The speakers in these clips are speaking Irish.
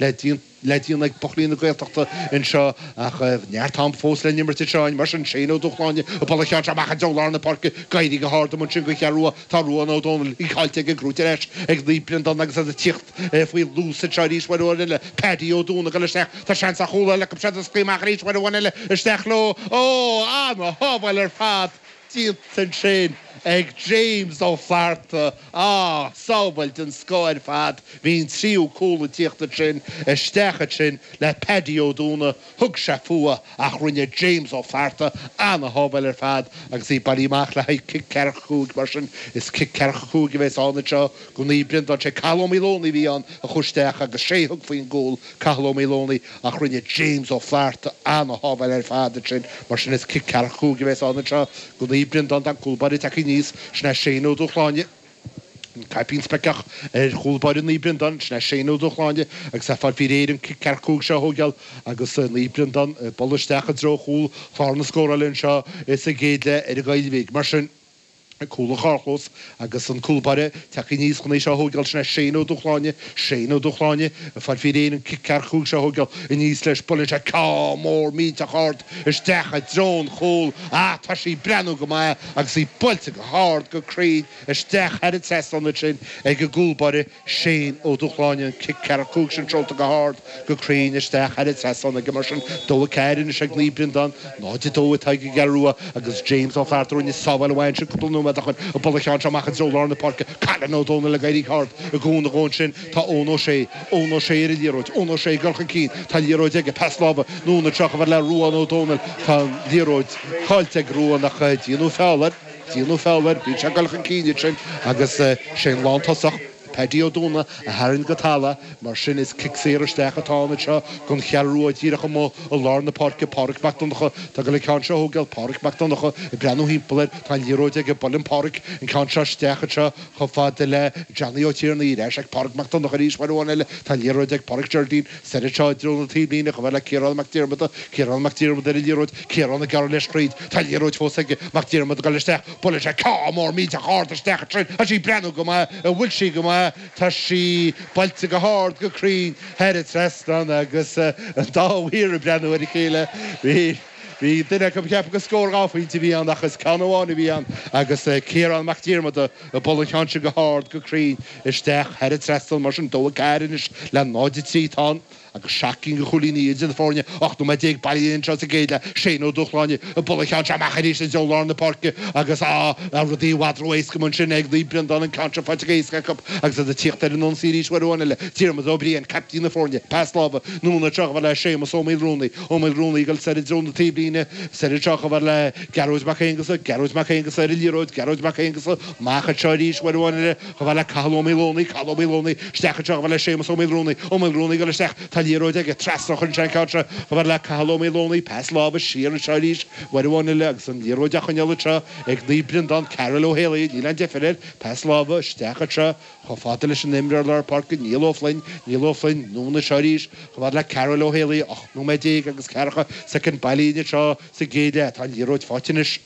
le déanamh ag buachaillí na Gaeltachta anseo ach neart am fós le n-imirt anseo mar sin Shane Ó Dúshláine ag bualadh an cheann seo amach i dtreo lár na páirce, ag éirí go hard ann ansin don Cheathrú Rua, tá Ruán Ó Dónaill caillte ag an gCeathrú Rua ar ais ag Naomh Breandán agus iad ag tíocht faoi luas anseo arís uair amháin eile, Paddy Ó Dúna ag dul isteach, tá seans ar chúl eile acu siad ag scaoileadh amach arís uair amháin eile, isteach leo, ó, ana-shábháil ar fad! Déanta ansin ag James Ó Flatharta. Ah, sábháil den scoth ar fad. Bhí an tríú cúl ag tíocht ansin isteach ansin le Paddy Ó Dúna. Thug sé fúithi ach rinne James Ó Flatharta ana-shábháil ar fad agus í buailte amach le haghaidh cic ceathracha cúig. Mar sin, is cic ceathracha cúig a bhéas ann anseo go Naomh Breandán. Sé Cathal Ó Maoileoin a bhí ann a chuaigh isteach agus sé thug faoin gcúl. Cathal Ó Maoileoin ach rinne James Ó Flatharta an-shábháil ar fad ansin, mar sin is cic ceathracha cúig a bheas ann anseo go Naomh Breandán, tá an cúl báire tagtha aníos, sin é Shane Ó Dúshláine, caipín speiceach ar chúl báire Naomh Breandán, sin é Shane Ó Dúshláine agus é ag fáil faoi réir an cic ceathracha cúig seo a thógáil agus Naomh Breandán ag dul isteach i dtreo chúl chlár na scórála anseo sa gcéad leath ar an gCaoilbhigh, mar sin. Cúl an charrchlós agus an cúl báire tagtha aníos chun é seo a thóigeáil, sin é Shane Ó Dúshláine, Shane Ó Dúshláine, ag fáil faoi réir an cic ceathracha cúig seo a thóigeáil, aníos leis, buaileann sé ceann mór millteach ard isteach i dtreo an chúl, ah tá sí ag breathnú go maith agus í buailte go hard go cruinn isteach thar an trasnán ansin ag an gcúl báire. Shane Ó Dúshláine an cic ceathracha cúig sin seolta go hard go cruinn isteach thar an trasnán aige mar sin, 2-4 anois ag Naomh Breandán, 0-2 atá ag an gCeathrú Rua agus James Ó Flatharta a rinne an-sábháil ansin cúpla nóiméad ó shin ag bualadh an cheann seo amach i dtreo lár na páirce, Cóilín Ó Dónaill ag éirí go hard i gcúinne dhó ansin tá Eoin Ó Sé, Eoin Ó Sé ar an liathróid, Eoin Ó Sé ag dul chun cinn tá an liathróid aige, pas láimhe anonn ina threo chomh fada le Ruán Ó Dónaill tá an liathróid caillte ag Ruán ach déanadh feall air. Déanadh feall air, bhí sé ag dul chun cinn ansin agus sé an lántosach, Paddy Ó Dúna, a tharraing go talamh, mar sin is cic saor isteach atá ann anseo gon Cheathrú Rua díreach amuigh i lár na páirce, Páraic Mac Donnacha, atá ag goil an ceann seo a thógáil, Páraic Mac Donnacha ag breathnú thimpeall air, tá an liathróid aige, buaileann Páraic an ceann seo isteach anseo chomh fada le Johnny Ó Tiarnaigh, ar ais ag Páraic Mac Donnacha arís uair amháin eile, tá an liathróid ag Páraic Jerdín, Sall anseo i dtreo na taobhlíne chomh fada le Ciarán Mac Diarmada, Ciarán Mac Diarmada ar an liathróid, Ciarán ag gearradh leis thríd, tá an liathróid fós aige, Mac Diarmada ag dul isteach, buaileann sé ceann mór millteach ard isteach ansin, tá sí ag breathnú go maith, an bhfuil sí go maith, tá sí buailte go hard go cruinn thar an trasnán agus an dá mhaor ag breathnú ar a chéile, bhí. Bhí duine acu ag ceapadh go scór dhá phointe a bhí ann ach is ceann amháin a bhí ann agus Ciarán Mac Diarmada ag bualadh an cheann sin go hard, go cruinn isteach thar an trasnán. Mar sin, 2-4 anois le 0-3 atá ann agus seacht gcinn de chúilíní idir na foirne. 18 nóiméad bailithe anseo sa gcéad leath, Shane Ó Dúshláine ag bualadh an cheann seo amach arís i dtreo lár na páirce agus rudaí i bhfad ró-éasca mar sin ag Naomh Breandán, an ceann seo faighte go héasca acu agus iad ag tíocht ar an ionsaí arís uair amháin eile. Diarmuid Ó Briain, captaen na foirne, pas láimhe, anonn trasna chomh fada le Séamus Ó Maoilruanaí. Ó Maoilruanaí ag dul soir i dtreo na taobhlíne, soir anseo chomh fada le Gearóid Mac Aonghusa, Gearóid Mac Aonghusa ar an liathróid, Gearóid Mac Aonghusa, amach anseo arís, uair amháin eile, chomh fada le Cathal Ó Maoileonaigh, Cathal Ó Maoileonaigh, isteach anseo chomh fada le Séamus Ó Maoilruanaí, Ó Maoilruanaí ag dul isteach, tá an liathróid aige, trasna a théann an ceann seo, chomh fada le Cathal Ó Maoileonaigh, pas láimhe siar anseo arís, uair amháin eile agus an liathróid á choinneáil anseo ag Naomh Breandán, Karl Ó hÉalaí, níl aon deifir air, pas láimhe isteach anseo, Chomh fada leis an imreoir lár páirce Niall Ó Floinn, Niall Ó Floinn, anonn anseo arís chomh fada le Karl Ó hÉalaí, 18 nóiméad agus ceathracha soicind bailithe anseo sa gcéad leath, tá an liathróid faighte anois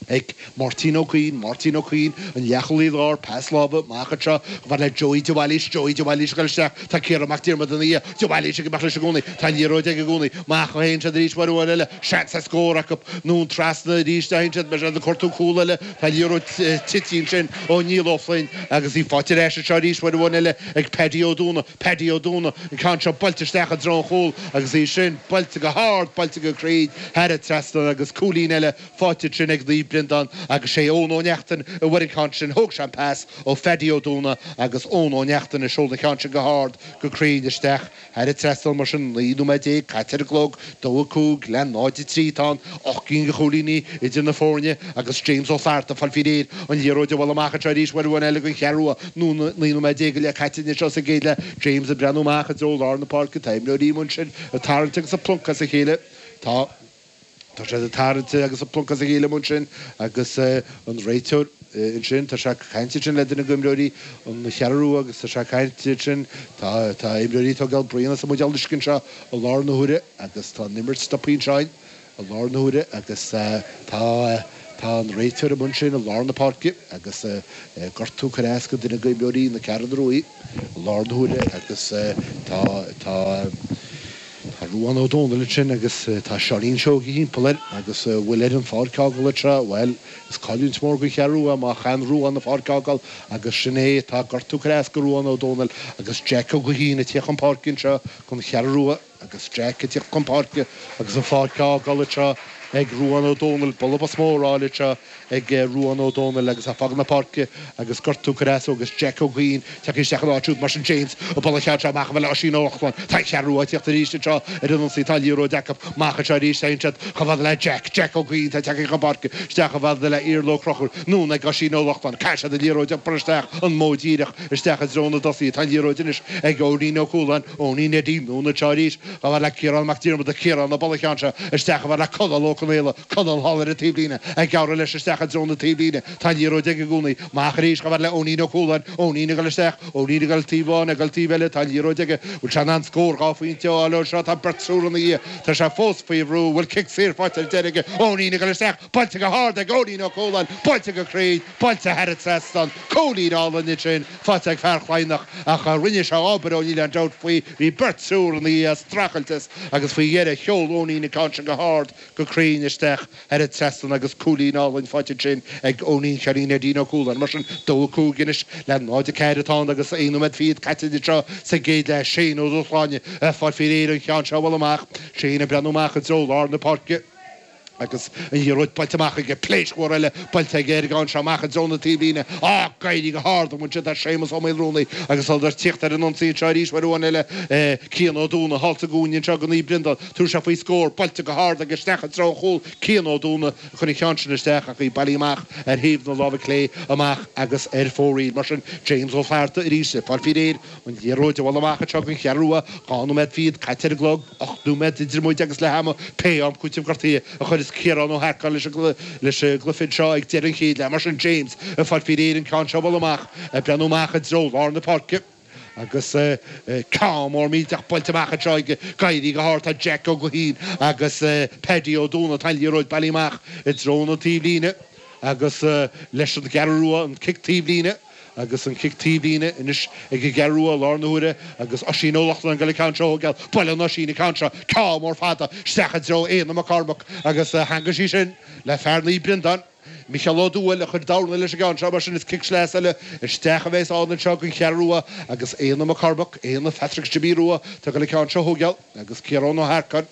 ag Máirtín Ó Cuinn, Máirtín Ó Cuinn, an leathchúlaí láir, pas láimhe amach anseo chomh fada le Joey de Bhailís, Joey de Bhailís ag gabháil isteach, tá Ciarán Mac Diarmada ina dhiaidh, de Bhailís ag imeacht leis i gcónaí, tá an liathróid aige i gcónaí, amach a théann siad arís uair amháin eile, seans ar scór acu, anonn trasna arís a théann siad, beidh siad ag cuartú cúl eile, Tá an liathróid tite ansin ó Niall Ó Floinn agus í faighte ar ais anseo arís uair amháin eile ag Paddy Ó Dúna. Paddy Ó Dúna, an ceann seo buailte isteach i dtreo an chúil agus í sin buailte go hard, buailte go cruinn thar an trasnán agus cúilín eile faighte ansin ag Naomh Breandán agus sé Eoin Ó Neachtain a bhfuair an ceann sin. Thóg sé an pas ó Phaddy Ó Dúna agus Eoin Ó Neachtain ag seoladh an cheann sin go hard, go cruinn isteach Thar an trasnán mar sin, 19 nóiméad caite ar an gclog, 2-5 le 0-3 atá ann, ocht gcinn de chúilíní idir na foirne agus James Ó Flatharta ag fáil faoi réir an liathróid a bhualadh amach anseo arís uair amháin eile don Cheathrú Rua. 19 nóiméad go leith caite anois anseo sa gcéad leath, James ag breathnú amach i dtreo lár na páirce, tá imreoirí amuigh ansin ag tarraingt agus ag pluncadh as a chéile. Tá. Tá siad ag tarraingt agus ag pluncadh as a chéile amuigh ansin agus an réiteoir ansin, tá sé ag caint ansin le duine de imreoirí an Cheathrú Rua agus tá sé ag caint ansin, tá tá imreoirí ag tógáil braon as an mbuidéal uisce anseo i láthair na huaire agus tá an imirt stoptha anseo i láthair na huaire agus tá tá an réiteoir amuigh ansin i lár na páirce agus gortú ag cur as do dhuine de imreoirí na Ceathrún Rua i láthair na huaire agus tá tá Tá Ruán Ó Dónaill ansin agus tá Seáinín Seoighe thimpeall air agus an bhfuil air an pháirc a fhágáil anseo, bhuel, is cailliúint mhór don Cheathrú Rua má chaitheann Ruán an pháirc a fhágáil agus sin é, tá gortú ag cur as do Ruán Ó Dónaill agus Jeaic Ó Gaoithín ag tíocht chun páirce anseo don Cheathrú Rua agus Jeaic ag tíocht chun páirce agus an pháirc á fhágáil anseo ag Ruán Ó Dónaill, bualadh bos mór á fháil anseo. ag Ruán Ó Dónaill agus é ag fágáil na páirce agus gortú ag cur as dó agus Jack Ó Gaoithín tagtha isteach ina áit siúd mar sin James ag bualadh an cheann seo amach chomh fada le Oisín Ó Lochlainn tá an Cheathrú Rua ag tíocht arís anseo ar an ionsaí tá liathróid acu amach anseo arís téann siad chomh fada le Jack Jack Ó Gaoithín atá tagtha chun páirce isteach chomh fada le Iarla Ó Conchúir anonn ag Oisín Ó Lochlainn caithfidh siad an liathróid a iompar isteach an modh díreach isteach i dtreo na dtosaithe tá an liathróid anois ag Eoinín Ó Cualáin Eoinín Eddie anonn anseo arís chomh fada le Ciarán Mac Diarmada Ciarán ag bualadh an cheann seo isteach chomh fada le Conall Ó Conaola, Conall thall ar an taobhlíne, ag gearradh leis isteach i dtreo na taobhlíne, tá liathróid aige i gcónaí, amach arís chomh fada le Eoinín Ó Cualáin, Eoinín ag dul isteach, Eoinín ag dul taobh amháin, ag dul taobh eile, tá liathróid aige, bhfuil sé in ann scór dhá phointe a fháil ó seo, tá beirt triúr ina dhiaidh, tá sé fós faoi bhrú, bhfuil cic saor faighte ar deireadh aige, Eoinín ag dul isteach, Buailte go hard ag Eoinín Ó Cualáin, buailte go cruinn, buailte thar an trasnán. Cúilín álainn ansin, faighte ag fear Chladhnach, ach rinne sé obair ó níl aon dabht faoi. Bhí beirt triúr ina dhiaidh ag streachailt as agus faoi dheireadh sheol Eoinín an ceann sin go hard go cruinn isteach thar an trasnán agus cúilín álainn faighte ansin ag Eoinín Cheoinín Eddie Ó Cualáin. Mar sin, dó a cúig anois le náid a ceathair atá ann agus aon nóiméad fichead caite anseo sa gcéad leath. Shane Ó Dúshláine ag fáil faoi réir an ceann seo a bhualadh amach. Shane ag breathnú amach i dtreo lár na páirce. agus an liathróid buailte amach aige, pléisc mhór eile buailte aige ar an gceann seo amach i dtreo na taobhlíne. Ag éirí go hard amuigh ansin tá Séamus Ó Maolrúnaí agus iad ag tíocht ar an ionsaí anseo arís uair amháin eile, Cian Ó Dúnaigh thall sa gcúinne anseo do Naomh Briondáin, tabharfaidh sé faoi scór, buailte go hard aige isteach i dtreo an chúil, Cian Ó Dúnaigh a chuir an ceann sin isteach ach tá sí bailithe amach ar thaobh na láimhe clé amach agus ar fóraoil. Mar sin, James Ó Flatharta arís ag fáil faoi réir. An liathróid a bhualadh amach anseo don Cheathrú Rua, dhá nóiméad fichead caite ar an gclog, ocht nóiméad idir muid agus leath ama, pé am cúitimh gortaithe a chuireas Ciarán Ó hEarcáin leis an gcluiche anseo ag deireadh an chéad leath. Mar sin James ag fáil faoi réir an ceann seo a bhualadh amach, ag breathnú amach i dtreo lár na páirce agus ceann mór millteach buailte amach anseo ag éirí go hard. Tá Jack Ó Gaoithín agus Paddy Ó Dónaill, tá an liathróid bailithe amach i dtreo na taobhlíne agus leis an gCeathrú Rua an cic taobhlíne. Agus an cic taobhlíne anois ag an gCeathrú Rua i láthair na huaire agus Oisín Ó Lochlainn ag dul an ceann seo a thógáil buaileann Oisín an ceann seo ceann mór fada isteach i dtreo Éanna Mac Cormaic agus theangmhaigh sí sin le fear Naomh Breandán, Micheál Ó Dúill, a chuir dorna leis an gceann seo mar sin is cic sleasa eile isteach a bheas ann anseo don Cheathrú Rua agus Éanna Mac Cormaic, Éanna, Phatrick Jimí Rua atá ag dul an ceann seo a thógáil agus Ciarán Ó hEarcáin.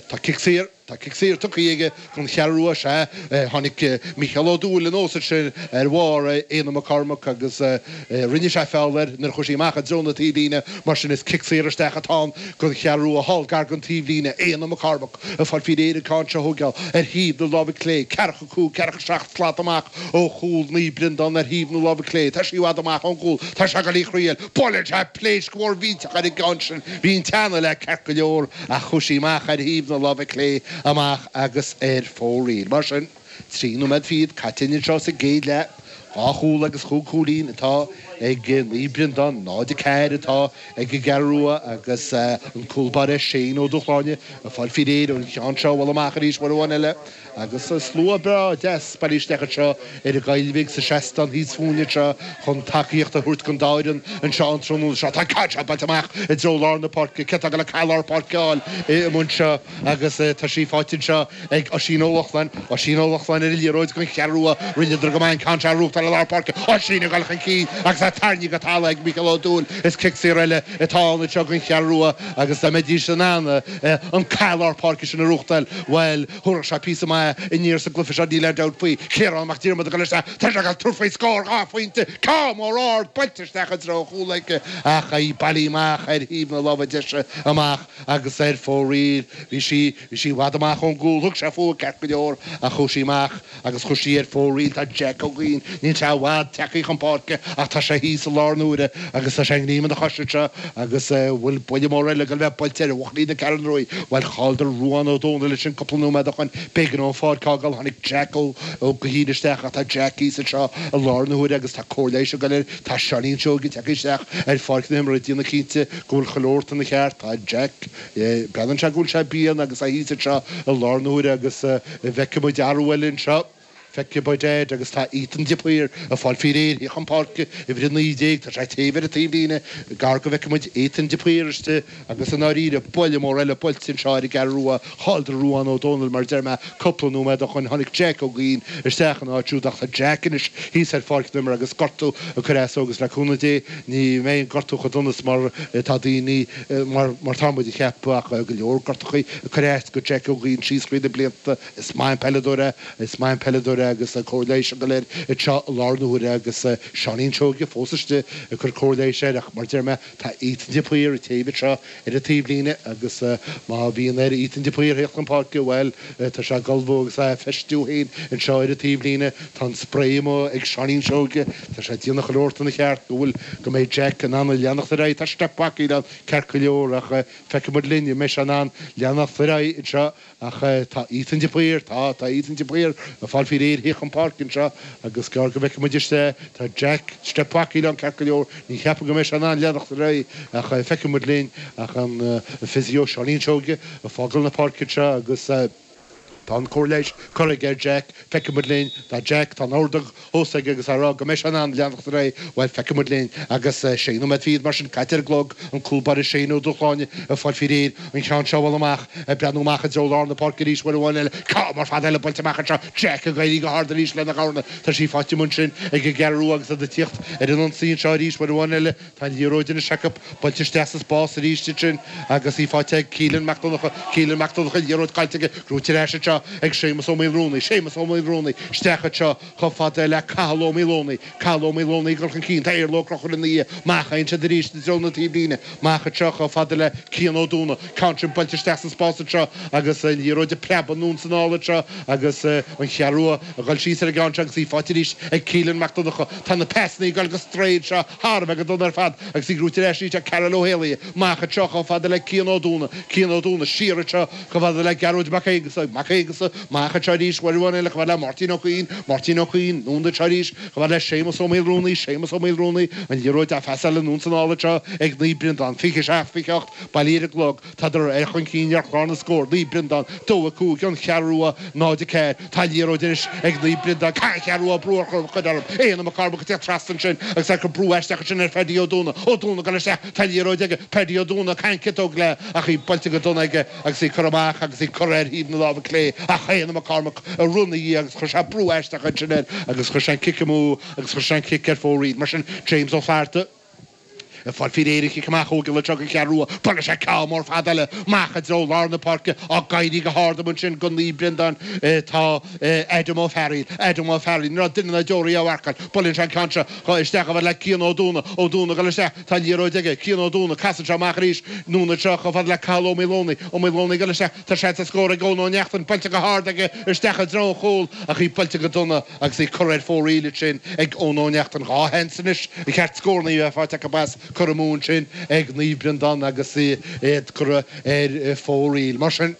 Tá cic saor, tá cic saor tugtha aige don Cheathrú Rua, is ea, tháinig Micheál Ó Dúill anuas ansin ar bharr Éanna Mac Cormaic agus rinne sé feall air nuair a chuaigh sí amach i dtreo na taobhlíne, mar sin is cic saor isteach atá ann don Cheathrú Rua thall gar den taobhlíne, Éanna Mac Cormaic ag fáil faoi réir an ceann seo a thóigeáil ar thaobh na láimhe clé, ceathracha cúig, ceathracha seacht slat amach ó chúl Naomh Briondáin ar thaobh na láimhe clé, tá sí i bhfad amach ón gcúl, tá sé ag dul í a thraíáil, buaileann sé. Pléasc mhór mhillteach ar an gceann sin. Bhí an teannadh léi ceart go leor ach chuaigh sí amach ar thaobh na láimhe clé amach agus ar fóraoil. Mar sin, trí nóiméad fichead caite anseo sa gcéad leath, dhá chúl agus chúig chúilín atá ag Naomh Breandán, 0, 4 atá ag an gCeathrú Rua agus an cúl báire Shane Ó Dúshláine ag fáil faoi réir an ceann seo a bhualadh amach arís uair amháin eile. Agus an slua breá deas bailithe isteach anseo ar an gCaillmhigh sa seastán thíos fúinne anseo chun tacaíocht a thabhairt don dá fhoireann anseo an tráthnóna seo, tá an ceann seo buailte amach i dtreo lár na páirce, cé atá ag goil an cath lár páirce a fháil an babhta seo agus tá sí faighte anseo ag Oisín Ó Lochlainn, Oisín Ó Lochlainn ar an liathróid don Cheathrú Rua, rinneadar go maith an ceann seo a ghnóthachtáil i lár páirce, Oisín ag goil chun cinn agus é tarraingthe go talamh ag Micheál Ó Dúill, is cic saor eile atá ann anseo don Cheathrú Rua agus dá mbeidís in ann an cath lár páirce sin a ghnóthachtáil, bhuel, thabharfadh sé píosa maith aniar sa gcluife seo, níl aon dabht faoi. Ciarán Mac Diarmada ag dul isteach, tá sé ag tabhairt faoi scór dhá phointe, ceann mór ard buailte isteach i dtreo an chúil aige ach í bailithe amach ar thaobh na láimhe deise amach agus ar fóraoil. Bhí sí, bhí sí i bhfad amach ón gcúl, thug sé fúithi ceart go leor ach chuaigh sí amach. agus chuaigh sí ar fóraoil, tá Jack Ó Gaoithín, níl sé i bhfad tagtha chun páirce ach tá sé thíos i láthair na huaire agus tá sé i ngreim ina chois anseo agus bhfuil buille mór eile ag goil a bheith buailte ar bhuachaillí na Ceathrún Ruaidhe. Bhuel, chailleadar Ruán Ó Dónaill leis an cúpla nóiméad ó shoin, b'éigean dó an pháirc a fhágáil, tháinig Jack Ó Gaoithín isteach ach tá Jack thíos anseo i láthair na huaire agus tá cóir leighis ag goil air, tá Seáinín Seoige tagtha isteach ar pháirc na himeartha ag déanamh cinnte go bhfuil chuile shórt ina cheart, tá Jack Breathnaíonn sé go bhfuil sé i bpian agus é thíos anseo i láthair na huaire agus an bhfeicfidh muid athrú eile anseo. Feicfidh muid é agus tá Ethan de Paor ag fáil faoi réir a thíocht chun páirce, uimhir 19, tá sé ag téamh ar an taobhlíne, gearr go bhfeicfidh muid Ethan de Paor istigh agus i ndáiríre buille mór eile buailte anseo ar an gCeathrú Rua, chailleadar Ruán Ó Dónaill mar a deir mé, cúpla nóiméad ó shoin tháinig Jack Ó Gaoithín isteach ina áit siúd ach tá Jack anois thíos ar pháirc na himeartha agus gortú ag cur as dó agus le cúnamh Dé ní bheidh an gortú chomh dona is mar atá daoine mar tá muid a cheapadh ach go leor gortachaí ag cur as do Jack Ó Gaoithín síos thríd na blianta is maith an peileadóir é is maith an peileadóir é agus cóir leighis ag goil air anseo i láthair na huaire agus Seáinín Seoige fós istigh ag cur cóir leighis air ach mar deir mé tá Ethan de Paor ag téamh anseo ar an taobhlíne agus má bhíonn ar Ethan de Paor thíocht chun páirce bhuel tá sé ag ullmhú agus é á fheistiú féin anseo ar an taobhlíne tá an sprae amuigh ag Seáinín Seoige Tá sé ag déanamh chuile shórt ina cheart go bhfuil go mbeidh Jack in ann a leanacht ar aghaidh. Tá steip bhacaíola ann ceart go leor ach feicfidh muid linn an mbeidh sé in ann leanacht ar aghaidh anseo ach tá Ethan de Paor, tá, tá Ethan de Paor ag fáil faoi réir a thíocht chun páirce anseo agus gearr go bhfeicfidh muid istigh é. Tá Jack, steip bhacaíola ann ceart go leor. Ní cheapaim go mbeidh sé in ann leanacht ar aghaidh ach feicfidh muid linn. Ach an physio Seáinín Seoige ag fágáil na páirce anseo agus. Tá an chomhairle leis. Cuireadh ar Jack, feicfimid linn. Tá Jack, tá an ord á thosaigh agus á rá go mbeidh sé in ann leanacht ar aghaidh. Bhuel, feicfidh muid linn. Agus sé nóiméad fichead mar sin caite ar an gclog. An cúl báire Shane Ó Dúshláine ag fáil faoi réir. An ceann seo a bhualadh amach. Ag breathnú amach i dtreo lár na páirce arís uair amháin eile. Ceann mór fada eile buailte amach anseo. Jack ag éirí go hard arís lena gabháil. Tá sí faighte amuigh ansin ag an gceathrú agus iad ag tíocht ar an ionsaí anseo arís uair amháin eile. Tá an liathróid anois acu buailte isteach sa spás arís ansin agus í faighte ag Cillín Mac Donnacha, Cillín Mac Donnacha, liathróid caillte aige, brúite ar ais anseo ag Séamus Ó Maolrúnaí, Séamus Ó Maolrúnaí, isteach anseo chomh fada le Cathal Ó Maolónaí, Cathal Ó Maolónaí ag dul chun cinn, tá Iarla Ó Conchúir ina dhiaidh, amach ansin arís i dtreo na taobhlíne, amach anseo chomh fada le Cian Ó Dúna, ceann seo buailte isteach sa spás anseo agus an liathróid ag preabadh anonn 's anall anseo agus an Cheathrú ag dul síos ar an gceann seo agus í faighte arís ag Cillín Mac Donnacha, tá na peasanna ag dul ar strae anseo Thar a bheith go dona ar fad agus í brúite ar ais arís ag Cathal Ó hÉalaithe. Amach anseo chomh fada le Cian Ó Dúna. Cian Ó Dúna. Siar anseo chomh fada le Gearóid Mac Aonghusa. Mac Aonghusa. Amach anseo arís uair amháin eile chomh fada le Máirtín Ó Cuinn. Máirtín Ó Cuinn. Anonn anseo arís chomh fada le Séamus Ó Maolrúnaí. Séamus Ó Maolrúnaí. An liathróid á phassáil anonn 's anall anseo ag Naomh Breandán. Fiche seacht, fiche a hocht, bailithe ar an gclog. Tá siad ar chun cinn ar chlár na scór, Naomh Breandán 2-5 An Cheathrú Rua 0-4. Tá an liathróid anois ag Naomh Breandán, caithfidh Ceathrú Rua brú a chur orthu creidim. Éanna Mac Cormaic ag teacht trasna ansin agus é ag cur brú aisteach ansin ar Phaddy Ó Dúna. Ó Dúna ag goil isteach, tá an liathróid aige, Paddy Ó Dúna, tarraingíonn ciotóg léi ach í buailte go dona aige agus í curtha amach agus í curtha ar thaobh na láimhe clé ach Éanna Mac Cormaic ag rith ina dhiaidh agus chuir sé brú aisteach ansin air agus chuir sé an cic amú agus chuir sé an cic ar fóraoil. Mar sin, James Ó Flatharta. Fáil faoi réir le cic amach ó gheall le don Cheathrú Rua, buaileann sé ceann mór fada eile amach i dtreo lár na páirce ag éirí go hard ansin go Naomh Breandán. Tá Adam Ó Fearaíl, Adam O'Farrell, ní raibh duine ná deoraí á mharcáil. Buaileann sé an ceann seo isteach chomh fada le Cian Ó Dúna, Ó Dúna ag dul isteach, tá liathróid aige, Cian Ó Dúna, casann sé amach arís, anonn anseo chomh fada le Cathal Ó Maolónaí, Ó Maolónaí ag dul isteach, tá seans ar scór ag Eoin Ó Neachtain, buailte go hard aige isteach i dtreo an chúil ach í buailte go dona. Agus í curtha ar fóraoil ansin ag Eoin Ó Neachtain dhá sheans anois ba cheart scóranna a bheith faighte acu as cur amú ansin ag Naomh Breandán agus iad curtha ar fóraoil. Mar sin,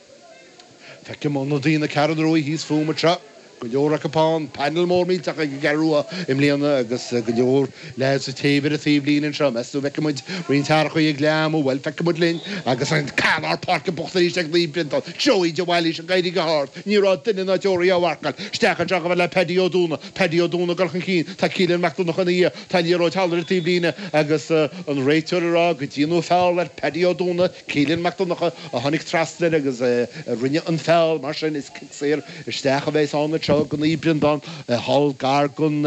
feicim ionadaithe na Ceathrún Rua thíos fúm anseo, go leor acu ann, painéal mór millteach ag an gCeathrú Rua i mbliana agus go leor Leaids istigh ar an taobhlíne anseo, meas tú an bhfeicfidh muid roinnt athraíochaí ag leath am. Bhuel, feicfidh muid linn. Agus an ceann lár páirce buaite arís ag Naomh Breandán. Joey de Bhailís ag éirí go hard. Ní raibh duine ná deoraí á mharcáil. Isteach anseo chomh fada le Paddy Ó Dúna. Paddy Ó Dúna ag dul chun cinn. Tá Cillín Mac Donnacha ina dhiaidh. Tá an liathróid thall ar an taobhlíne agus an réiteoir ag rá go ndearnadh feall ar Paddy Ó Dúna. Cillian Mac Donnacha a tháinig trasna air agus a rinne an feall, mar sin is cic saor isteach a bheidhs ann anseo ag Naomh Breandán thall gar don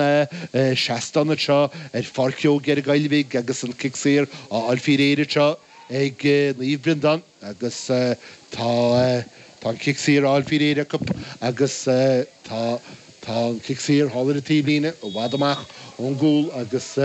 seastán anseo ar Pháirc Joe Gearraigh Gaill Bhig agus an cic saor á fháil faoi réir anseo ag Naomh Breandán agus tá an cic saor á fháil faoi réir acu agus tá an cic saor thall ar an taobhlíne i bhfad amach ón gcúl agus.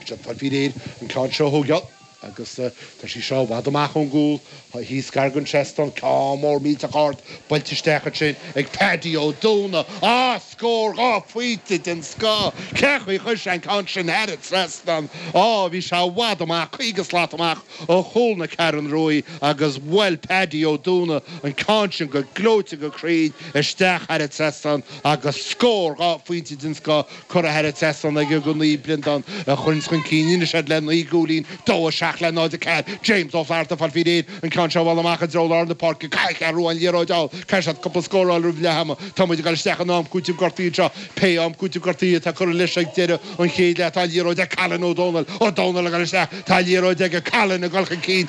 Tá faoi réir an ceann seo a thógáil agus tá sé seo i bhfad amach ón gcúl thíos gar don seastán. Ceann mór millteach ard buailte isteach ansin ag Paddy Ó Dónaill. Á! Scór! Dhá phointe den scoth! Cén chaoi ar chuir sé an ceann sin thar an trasnán? Á, bhí sé i bhfad amach, caoga slat amach ó chúl na Ceathrún Ruaidh agus bhuail Paddy Ó Dónaill an ceann sin go gleoite go cruinn isteach thar an trasnán agus scór! Dhá phointe den scoth! Curtha thar an trasnán aige do Naomh Breandán a chuireanns chun cinn anois iad le 9 gcúilín, 2, 7 le 0, 4 James Ó Flatharta, ag fáil faoi réir, an ceann seo a bhualadh amach i dtreo lár na páirce, caithfidh an Cheathrú Rua an liathróid a fháil, caithfidh siad cúpla scór a fháil roimh leath ama, Tá muid ag dul isteach in am cúitimh gortaithe anseo, Pé am cúitimh gortaithe atá curtha leis ag deireadh an chéad leath tá an liathróid ag Callain Ó Dónaill, Ó Dónaill ag dul isteach, tá an liathróid aige, Callain ag dul chun cinn,